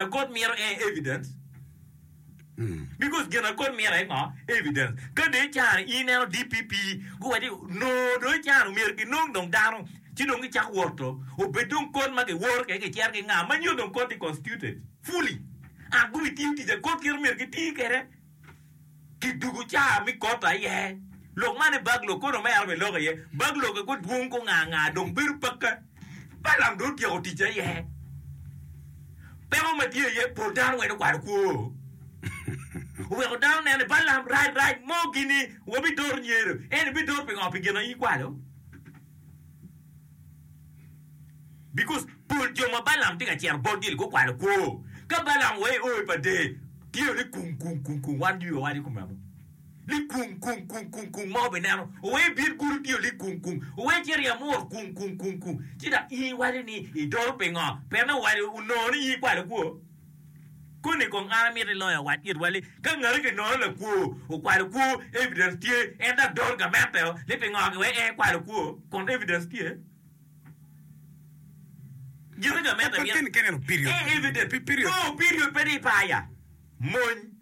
agot mito aye evidence because gin agot mito aye ngo evidence ka dong icano in ineno DPP guwaco ni noo dong icano myero ginong dong dano ci dong gicak woto obed dong kony ma giworo keken gicito ki nga ma nyo dong koti constituted fully and gubitiyo tic agot kit ma myero giti kwede. ki dugu caa mi kot aye lok man i bag lok kono mere bene lok iye bag lok eko dwong gunga nga dong bedo pakke Balaam dong otyeko ticce aye peko ma tye iye pol dano weny okwalo kwo oweko dano neno ni Balaam rac rac mo gini wabidor nyero en ibidor pingo pi gin aye ikwalo Because pol jo ma Balaam tye ka cito botgi-ni gukwalo kwo. Ka Balaam oa i oi pa Dee, tye ni kung kung kung kung, wan jwi wawaco kome amo. Li kung kung kung kung kung ma wabineno, owe ibin gudo tye li kung kung, owe ice ryem mur kung kung kung kung. Ci dok in iwaco ni idoro pingo? Pien iwaco onongo ni in ikwalo kwo. Koni kong an amito iloyo awac itwa ni, ka ngati kinono lakwo okwalo kwo, evidence tye, en dok doro gamente o ni pingo ki wek en kwalo kwo, kun evidence tye. Gin ma gamente mito, ee evidence, no period pe ni ipaya, mony.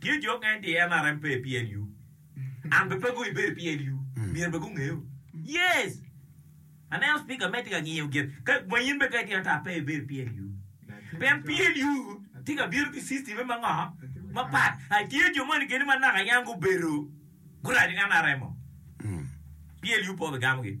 Tye jo okene ti en arem pe i PLU and be pe gu ibedo i PLU myero be gu ngeyo. Yes! Aneno speaker me ti ka ngiyo gin ka ma in be ka itino ata pe ibedo i PLU. Pien PLU ti ka bino ki system me ma ngo? Ma pat. A tye jo moni keni ma naka yam gu bedo gu raco NRM-o. PLU pe obi gamo gi.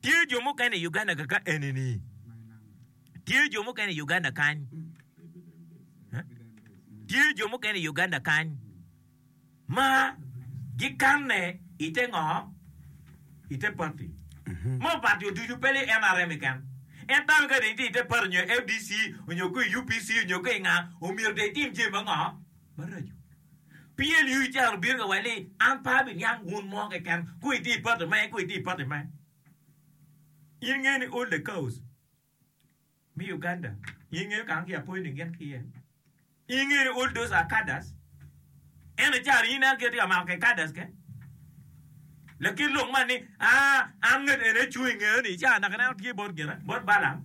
Tye jo mukene i Uganda kaka enini. Tye jo mukene i Uganda kany. Tye jo mukene i Uganda kany ma gikanne i te ngo? I te pati. Ma opati oducu pe ni nrm keken. En tawe ka dong itye i te pati nyo FDC nyo ko i UPC nyo ko i nga, omyero dong itim jami ma ngo? maraco. PLU icano obino ka wel ni an pe abiniang wun mo keken ku itye i party me ku itye i party me. In ingeyo ni all the cows me Uganda in ingeyo kany ki apoyo ni gin ki iye? In ingeyo ni all those are cadres? Ento icano in an ki atye ka mako kede cadres ke lakit lok man ni aa an ngat eni acung ingeyo ni icano naka ineno tye bot gina bot Balam.